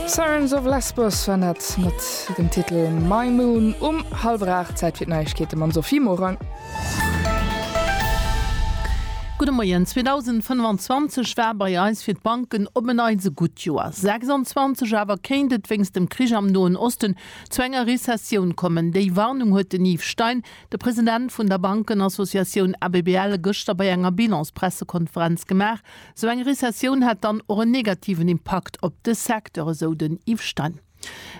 Sirens of Lesbos war dat mat dem Titel My Moon um hallwer 8, Zäit fir d'Neiegkeete mam Sophie Morang. Gudde Moien, 2025 war bei eis fir d'Banken op en Neits e gutt Joer. 26 awer kéint et wéinst dem Krich am Noen Osten zu enger Rezessioun kommen. Déi Warnung huet den Yves Stein, de President vun der Bankenassociatioun ABBL, gëschter bei enger Bilans-Pressekonferenz gemaach. Esou eng Rezessioun hätt dann och en negativen Impakt op de Secteur, esou den Yves Stein.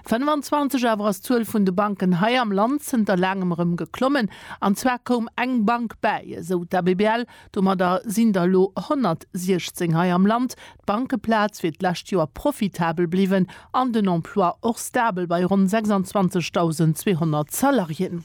25 awer ass d'Zuel vun de Banken hei am Land zënter laangem erëm geklommen. An zwar koum eng Bank bäi, esou d'ABBL. Domadder sinn der elo 116 hei am Land. D'Bankeplaz wier d'lescht Joer profitabel bliwwen an den Emploi och stabel bei ronn 26.200 Salariéen.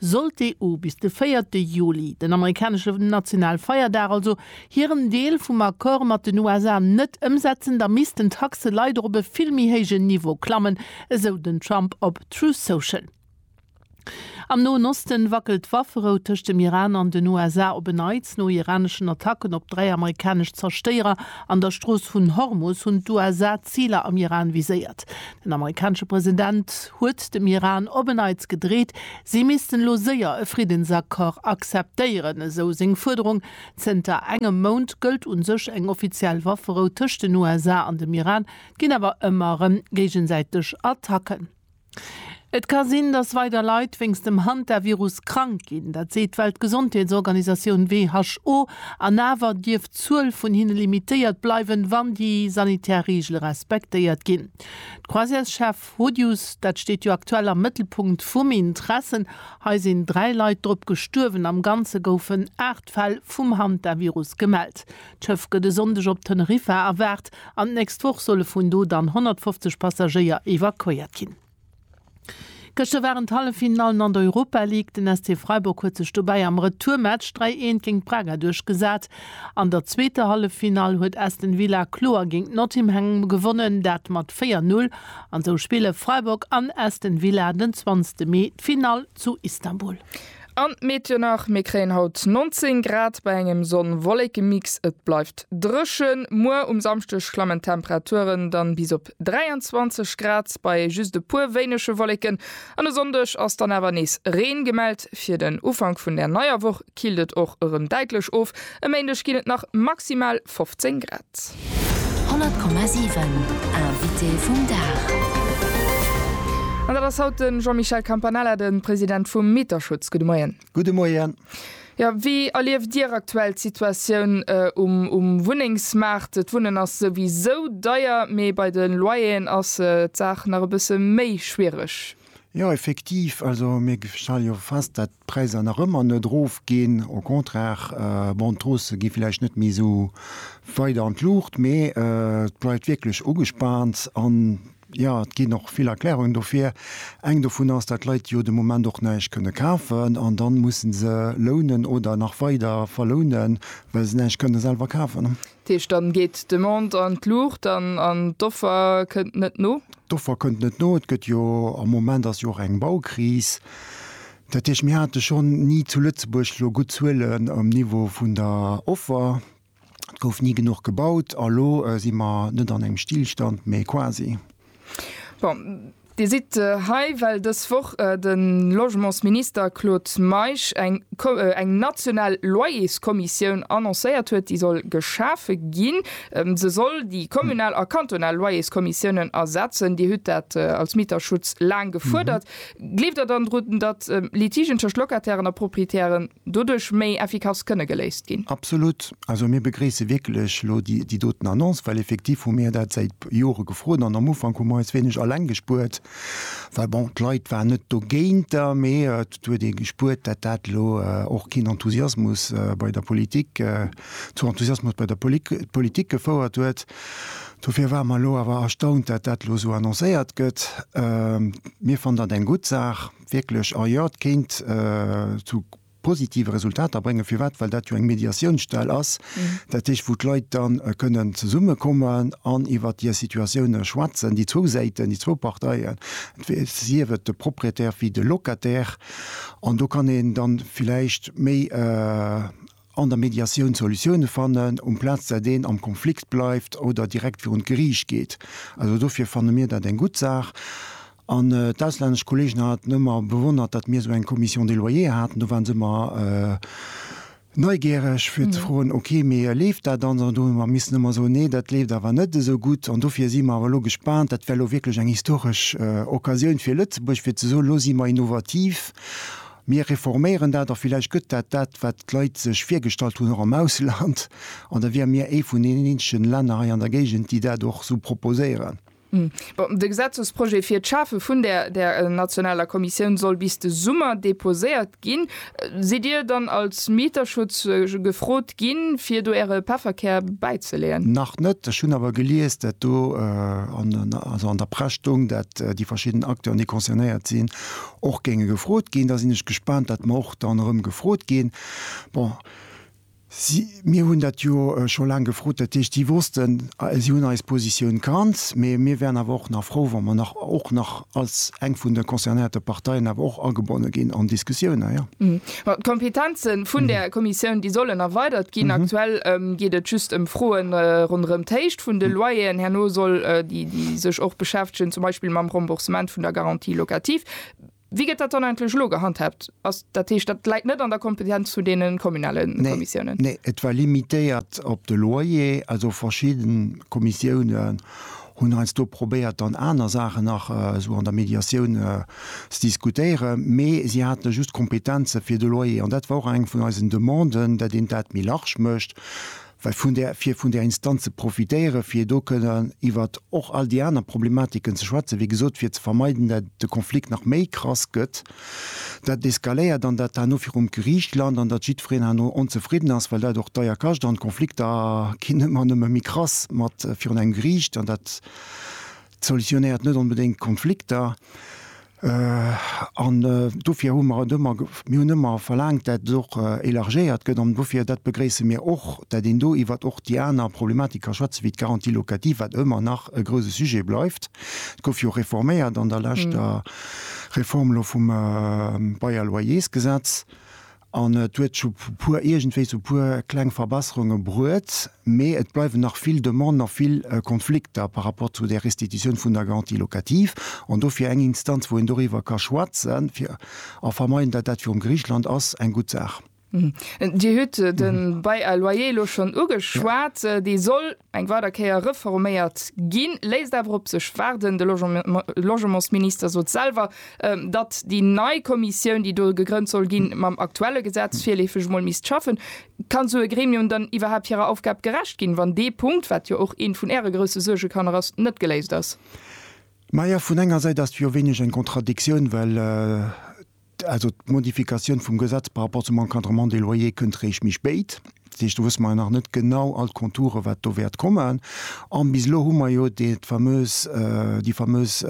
Sollt d'EU bis de véierte Juli, den amerikanesche Nationalfeierdag also, hiren Deel vum Accord mat den USA net ëmsetzen, da missten d'Taxe leider op e vill méi héijen Niveau klammen, esou den Trump op Truth Social. Am Noen Osten wackelt d'Wafferou tëscht dem Iran an den USA op en Neits. No iraneschen Attacken op dräi amerikanesch Zerstéierer an der Strooss vun Hormus hunn d'USA Ziler am Iran viséiert. Den amerikanesche President huet dem Iran op en Neits gedreet, si missten elo séier e Friddensaccord akzeptéieren, esou seng Fuerderung. Zënter engem Mount gëllt u sech eng offiziell Wafferou tëscht den USA an dem Iran, et ginn awer ëmmer erëm géigesäiteg Attacken. Et ka sinn, datt weider Leit wéinst dem Hantavirus krank ginn, dat seet d'Weltgesondheetsorganisatioun, WHO. An awer dierf Zuel vun hinne limitéiert bleiwen, wann déi sanitär Reegele respektéiert ginn. D'Croisièreschef Rodius, dat steet jo aktuell am Mëttelpunkt vum Intressen. Hei sinn dräi Leit drop gestuerwen. Am Ganze goufen aacht Fäll vum Hantavirus gemellt. D'Schëff gëtt e Sonndeg op Teneriffa erwaart an d'nächst Woch solle vun do dann 150 Passagéier evakuéiert ginn. Gëschter waren d'Halleffinallen an der Europa League. Den SC Freiburg huet sech dobäi am Retourmatch 3 Eent géint Braga duerchgesat. An der zweeter Halleffinall huet Aston Villa kloer géint Nottimham gewonnen, dat mat 4, 0. An esou spille Freiburg an Aston Villa den 20 Mee d'Finall zu Istanbul. An d'Meet jo nach, mir kréien haut 19 Grad bei engem Sonn-Wolleken-Mix. Et bleift dréchen. Muer um Samschdeg klammen d'Temperaturen dann bis op 23 Grad bei just e puer wéinege Wolleken. An e Sonndeg ass dann awer nees Reen gemellt. Fir den Ufank vun der neier Woch killt et och erëm däitlech of. E Méindeg ginn et nach maximal 15 Grad. 100,7 Invité vum Dag. An dat ass haut de Jean-Michel Campanella, de President vum Mieterschutz. Gudde Moien. Gudde Moien. Jo, wéi erlieft Dir aktuell d'Situatioun um Wunnengsmaart? D'Wunnen ass souwisou deier, mee bei de Loyeren ass d'Saach nach e bësse méi schwiereg. Jo, effektiv. Also mir stelle jo fest, datt d'Präisser nach ëmmer net erofginn. Au contraire, bon, d'Haussë gi vläicht net méi esou weit an d'Luucht, mee et bleift wierklech ugespaant. An jo, et ginn och vill Erklärungen dofir. Eng dovun ass, datt d'Leit jo de Moment och näischt kënne kafen an da musse se lounen oder nach weider verlounen, well se näischt kënne selwer kafen. Dat heescht, dann geet d'Demande an d'Luucht an an d'Offer kënnt net no? D'Offer kënnt net no. Et gëtt jo, am Moment ass jo och eng Baukris. Dat heescht, mir hate schonn ni zu Lëtzebuerg elo gutt Zuelen um Niveau vun der Offer. Et gouf ni genuch gebaut a lo si mer net an engem Stillstand, mee quasi. Bon, Dir sidd hei, well dës Woch de Logementsminister Claude Meisch eng national Loyerskommissioun annoncéiert huet, déi soll geschafe ginn. Se soll déi kommunal a kantonal Loyerskommissiounen ersetzen. Dir hutt dat als Mieterschutz laang gefuerdert. Gleeft Der dann drun, datt Litigen tëscht Locatairen a Proprietäre doduerch méi effikass kënne geléist ginn. Absolut. Also mir begréisse wierklech elo déi doten Annonce, well effektiv hu mir dat säit Jore gefrot an am Ufank hu mer eis wéineg Alleng gespuert, well bon, d'Leit waren net dogéinter, mee et huet ee gespuert, dat dat elo och keen Enthusiasmus bei der Politik, zu Enthusiasmus bei der Politik gefouert huet. Dofir ware mer elo awer erstaunt, dat dat elo esou annoncéiert gëtt. Mir fannen dat eng gutt Saach. wierklech en Yard kéint zu positive Resultater bréngen. Firwat? Well dat jo eng Mediatiounsstell ass, dat heescht wou d'Leit dann kënnen zesummekommen an iwwer hir Situatioune schwätzen, déi zwou Säiten, déi zwou Parteien, sief et de Proprietär wéi de Locataire. An do kann een dann villäicht méi. An der Mediatioun Solutioune fannen, amplaz dat een am Konflikt bleift oder direkt virun d'Geriicht geet. Also dofir fanne mir dat eng gutt Saach. An d'auslännesch Kolleegen haten ëmmer bewonnert, datt mir esou eng Commission des loyers haten. Do waren se ëmmer neigiereg fir ze froen, ok, mee leeft dat dann? An do hu mer missen ëmmer soen, nee, dat leeft awer net esou gutt. An dofir si mer awer elo gespaant, dat wär elo wierklech eng historesch Occasioun fir Lëtzebuerg, fir ze soen, elo si mer innovativ. Mir reforméieren dat a villäicht gëtt dat dat, wat d'Leit sech virgestallt hunn, och am Ausland, an da wäre mir ee vun deenen eenzegen Länner hei an der Géigend, déi dat och esou proposéieren. Bon, de Gesetzesprojet fir d'Schafe vun där nationaler Kommissioun soll bis de Summer deposéiert ginn. Sidd Dir dann als Mieterschutz gefrot ginn, fir do Äre Pefferkär bäizeleeën? Nach net. Ech hunn awer gelies, dat do, also an der Press stoung, dat déi verschidden Acteuren, déi concernéiert sinn, Och géinge gefrot ginn. Da sinn ech gespaant, datt mer och dann erëm gefrot ginn. Bon, si, mir hunn dat jo scho laang gefrot, dat heescht, si wossten, si hunn eis Positioun kannt. Mee mir wären awer och nach frou, wa mer nach, och nach als eng vun de concernéierte Parteien, awer och agebonne ginn an d'Diskussioun, naja. Ma d'Kompetenze vun där Kommissioun, déi sollen erweidert ginn. Aktuell geet et just ëm Froe ronderëm d'Héicht vun de Loyeren. Herno soll déi sech och beschäftegen zum Beispill mam Remboursement vun der Garantie locative. Wéi gëtt dat dann eigentlech elo gehandhaabt? Ass, dat heescht, dat läit net an der Kompetenz vun deene kommunale Kommissiounen? Nee, et war limitéiert op de Loyer. Also verschidde Kommissioune Hunn heiansdo probéiert dann aner Saachen nach esou an der Mediatioun ze diskutéieren, mee si hate just d'Kompetenze fir de Loyer. An dat war och eng vun eisen Demanden, dat een dat méi large mécht, well vun där, fir vun där Instanz ze profitéieren, fir do kënnen iwwert och all déi aner Problematiken ze schwätzen, wéi gesot, fir ze vermeiden, dat de Konflikt nach méi krass gëtt. Dat eskaléiert an dat herno virum Geriicht lant an datt jiddwereen herno onzefridden ass, well dat och deier kascht an d'Konflikter ginn ëmmer an ëmmer méi krass mat virun engem Geriicht an dat solutionéiert net onbedéngt d'Konflikter. An dofir hu mer et ëmmer, mir hunn ëmmer verlaangt, dat et och élargéiert gëtt an dofir, dat begréisse mir och, dat een do iwwert och déi aner Problematik ka schwätzen, wéi d'Garantie locative, wat ëmmer nach e grouse Sujet bleift. Et gouf jo reforméiert an der leschter. Reform elo vum Bail Loyersgesetz an et huet scho puer iergendwéi sou puer kleng Verbesserunge bruet, mee et bleiwen nach vill Demanden a vill Konflikter par rapport zu der Restitutioun vun der Garantie locative an dofir eng Instanz wou een doriwwer ka schwätzen a vermeiden, datt dat virum Gericht lant, ass eng gutt Saach. Dir hutt de Bail à loyer elo schonn ugeschwat. Dee soll eng weider Kéier reforméiert ginn, léisst awer op sech waarden. De Logementsminister sot selwer, datt déi nei Kommissioun, déi do gegrënnt soll ginn, mam aktuelle Gesetz virleefeg emol misst schaffen. Kann esou e Gremium dann iwwerhaapt hirer Aufgab gerecht ginn, wann dee Punkt, wat jo och ee vun Äre grousse Suergekanner ass, net geléist ass? Majo, vun enger Säit ass et jo wéineg eng Kontradiktioun, well Also d'Modifikatioun vum Gesetz par rapport zum Encadrement des loyers kënnt eréischt méi spéit. Dat heescht, do wësse mer jo nach net genau all d'Konturen, wat do wäert kommen. An bis elo hu mer jo dat fameus, déi fameus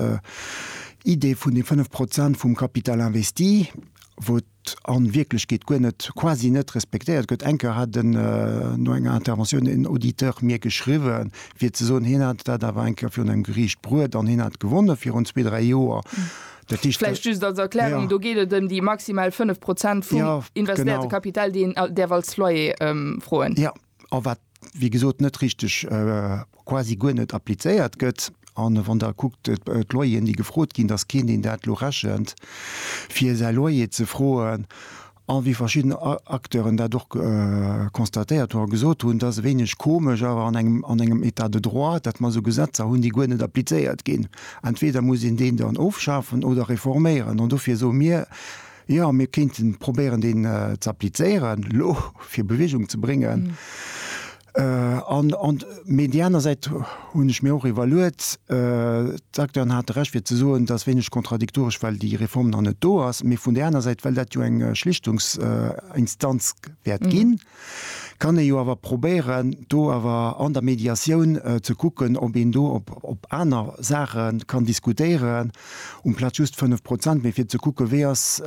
Idee vun de fënnf Prozent vum Capital investi, wou an Wierklechkeet guer net, quasi net respektéiert gëtt. Eng Kéier hat en, no enger Interventioun, en Auditeur mir geschriwwen, fir ze soen, hien hätt dat awer eng Kéier virun engem Geriicht bruet an hien hätt gewonnen virun zwee, dräi Joer. Vläicht just als Erklärung, do geet et ëm déi maximal 5 Prozent vum investéierte Kapital, deen Dir däerf als Loyer froen. Jo, a wat, wéi gesot, net richteg, quasi guer net applizéiert gëtt. A wann Der kuckt, d'Loyeren, déi gefrot ginn, dass keen, deen dat elo rechent, fir säi Loyer ze froen, A wéi verschidden Acteuren dat och constatéiert hu a gesot hunn, et ass e wéineg komesch awer an engem an engem Etat de droit, datt mer esou Gesetzer hunn, déi guer net applizéiert ginn. Entweder muss een deen dann ofschafen oder reforméieren. An dofir soe mir, jo, mir kéinten probéieren, deen z'applizéieren elo, fir Bewegung ze bréngen. Mee déi aner Säit hunn ech mir och iwwerluet. D'Acteuren hate Recht fir ze soen, dass wéineg kontradiktoresch, well déi Reform nach net do ass. Mee vun där aner Säit, well dat jo eng Schlichtungsinstanz wäert ginn, kann ee jo awer probéieren do awer an der Mediatioun ze kucken, ob een do op aner Saache kann diskutéieren, um Platz just 5 Prozent, mee fir ze kucke wéi ass,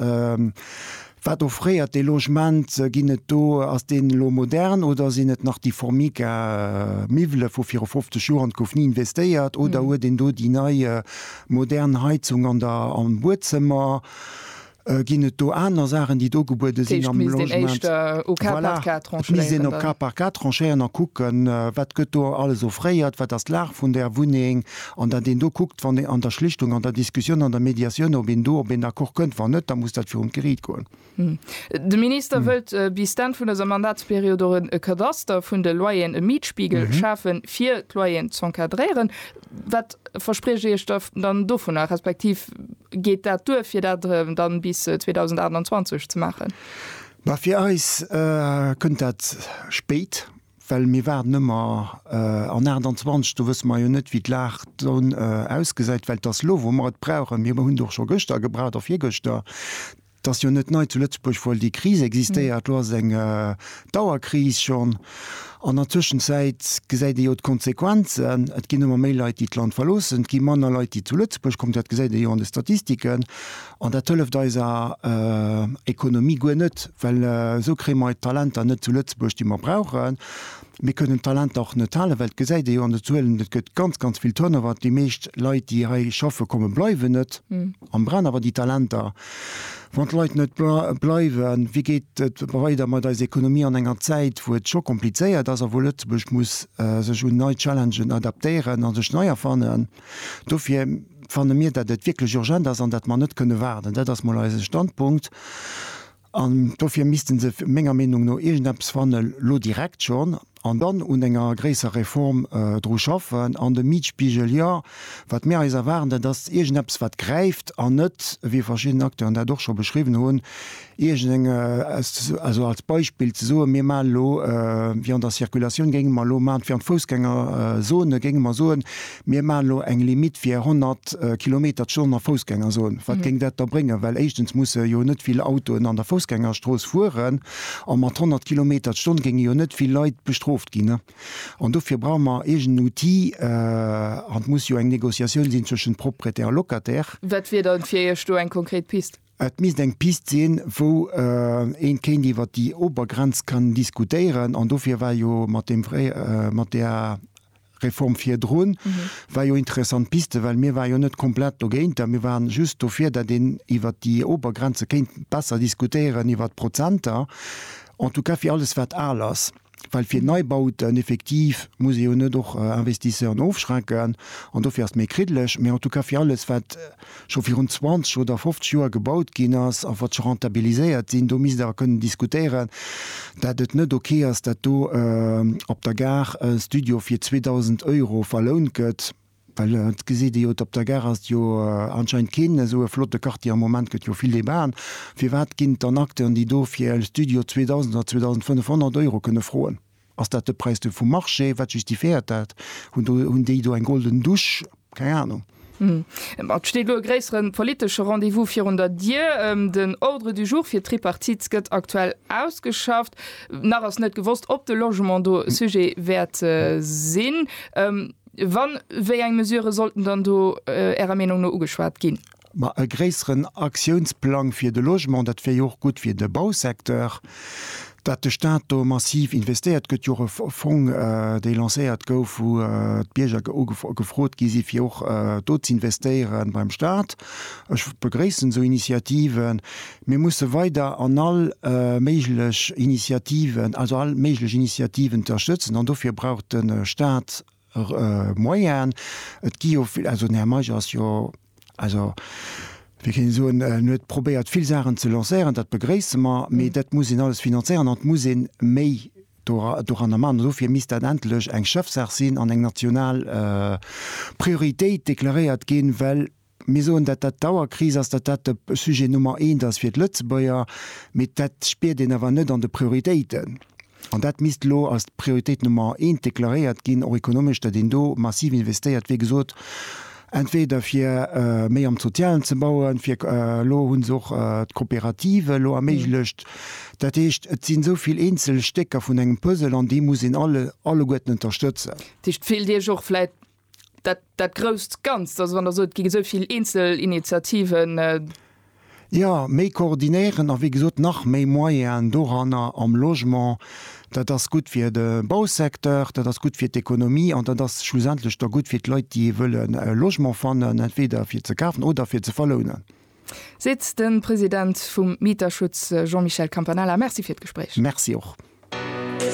Wat offréiert dee Logement? Ginn et do, ass deen elo modern oder sinn et nach déi Formica Miwwele vu viru 50 Joer an et gouf ni investéiert? Oder huet een do déi nei modern Heizung an der, am Buedzëmmer? Ginn et do aner Saachen déi do gebuede sinn am Logement? D'Fro misst een éischt au cas par cas tranchéieren. Voilà, et misst een au cas par cas tranchéieren a kucken, wat gëtt do alles offréiert, wat ass d'Lag vun där Wunneng? An datt een do kuckt, wann ee an der Schlichtung, an der Diskussioun, an der Mediatioun, ob een do op een Accord kënnt. Wann net, da muss dat virum d'Geriicht goen. De Minister wëllt bis d'Enn vun dëser Mandatsperiod och e Kadaster vun de Loyeren, e Mietspiegel, schafen, fir d'Loyeren z'encadréieren. Wat verspriecht Dir Iech dann dovunner, respektiv geet dat duer, fir dat dann bis 2028 ze maachen? Bah, fir eis kënnt dat spéit. well mir waarden ëmmer an 28, do wësse mer jo net, wéi d'Lag dann ausgesäit, well et ass elo, wou mer et brauchen. Mir hunn et och scho gëschter gebraucht a virgëschter. Et ass jo net nei zu Lëtzebuerg, wou déi Kris existéiert, elo ass et eng Dauerkris schonn. An der Tëschenzäit gesäit ee jo d'Konsequenzen, et ginn ëmmer méi Leit, déi d'Land verloossen, et gi manner Leit, déi zu Lëtzebuerg kommen, dat gesäit ee jo an de Statistiken. An dat hëlleft eiser Ekonomie guer net, well esou kréie mer d'Talenter net zu Lëtzebuerg, déi mer brauchen. Mir kënnen d'Talenter och net halen, well et gesäit ee jo an de Zuelen, et gëtt ganz, ganz vill Turnover. Déi meescht Leit, déi hei schaffe kommen, bleiwen net an brauchen awer déi Talenter. Wann d'Leit net bleiwen, wéi geet et weider mat eiser Ekonomie an enger Zäit, wou et scho komplizéiert ass a wou Lëtzebuerg muss sech un nei Challengen adaptéieren a sech nei erfannen? Dofir fanne mir, datt et wierklech urgent ass an datt mer net kënne waarden. Dat ass mol eise Standpunkt. An dofir misste se menger Meenung no iergendeppes fanne lo direkt schonn an dann un enger gréisserer Reform dru schaffen. An de Mietspiegel, jo, wat mir eis erwaarden, dat ass iergendeppes wat gräift an net, wéi verschidden Acteuren dat och scho beschriwwen hunn, Iergendeng, also als Beispill ze soen, mir maachen elo Viande en circulation, géinge mer elo maachen, d'Viande Foussgängerzone, géinge mer soen, mir maachen elo eng Limite fir 100 Kilometer d'Stonn a Foussgängerzone. Wat géing dat da bréngen? Well éischtens musse jo net vill Autoen an der Foussgängerstrooss fueren a mat 100 Kilometer d'Stonn géinge jo net vill Leit bestrooft ginn. An dofir brauche mer iergenden Outil an et muss jo eng Négociatioun sinn zwëschent Propriétaire a Locataire. Wat wier da fir Iech do eng konkret Piste? Et misst eng Pist sinn, wou een kéint iwwert déi Obergrenz kann diskutéieren. An dofir war jo mat deem fréie, mat där Reform virdrun, war jo interessant d'Piste, well mir ware jo net komplett dogéinter. Mir waren just dofir, datt een iwwert déi Obergrenze kéint besser diskutéieren, iwwert d'Prozenter, en tout cas fir alles wat al ass. Well fir Neibauten, effektiv, muss ee jo net och Investisseuren ofschrecken an dofir ass et méi kriddeleg. Mee en tout cas fir alles, wat scho virun 20 oder 50 Joer gebaut ginn ass a wat scho rentabiliséiert sinn, do misst Der kënnen diskutéieren, dat et net ok ass, dat do op der Gare e Studio fir 2.000 Euro verlount gëtt. Well et geséit ee jo, et op der Gare ass jo anscheinend keen esou e flotte Quartier am Moment, gëtt jo vill Debaten. Firwat ginn et dann Acteuren, déi do fir e Studio 2.000 oder 2.500 Euro kënne froen? Ass dat de Präis do vum Marché? Wat justifiéiert dat? Hunn do, hunn déi do eng golden Dusch? Keng Anung. Et steet elo e gréissere politesche Rendez-vous virun der Dier. Den Ordre du jour fir d'Tripartite gëtt aktuell ausgeschafft. Nach ass net gewosst, ob de Logement do e Sujet wäert sinn. Wann, wéi eng Mesurë sollten dann do Ärer Meenung no ugeschwat ginn? Ma e gréisseren Aktiounsplang fir de Logement, dat wier jo och gutt fir de Bausecteur, datt de Staat do massiv investéiert. Et gëtt jo och e Fong, dee lancéiert gouf, wou d'Bierger gefrot gi si fir och do z'investéiere beim Staat. Ech begréissen esou Initiativen, Mir musse weider an all méiglech Initiativen, also all méiglech Initiativen ënterstëtzen, an dofir brauch de Staat Moyene. Et gi jo vill, also den Här Meisch ass jo, also wéi kéint ee soen, en huet probéiert vill Saachen ze lancéieren, dat begréisse mer, mee dat muss een alles finanzéieren an et muss ee méi doranner maachen. An dofir misst dat endlech eng Chefsaach sinn an eng national Prioritéit deklaréiert ginn, well Mir soen, datt dat d'Auerkris ass, datt dat de Sujet Nummer eent ass fir d'Lëtzebuerger, mee dat spiert een awer net an de Prioritéiten. An dat misst elo als d'Prioritéit Nummer eent deklaréiert ginn, och ekonomesch, datt een do massiv investéiert, wéi gesot, entweder fir méi am Sozialen ze bauen, fir, elo hu se och d'Coopérative elo erméiglecht. Dat heescht, et sinn esou vill eenzel Stécker vun engem Puzzle an déi muss een alleguerten ënterstëtzen. Dat heescht, fillt Dir Iech och vläit dat, dat grousst Ganzt, also wann Der sot, et gi esou vill eenzel Initiativen. Jo, méi koordinéieren a wéi gesot nach méi Moyenen doranner am Logement. Dat ass gutt fir de Bausecteur, dat ass gutt fir d'Ekonomie an dat ass schlussendlech da gutt fir d'Leit, déi wëlle Logement fannen, entweder fir ze kafen oder fir ze verlounen. Seet de President vum Mieterschutz Jean-Michel Campanella. Merci fir d'Gespréich. Merci och.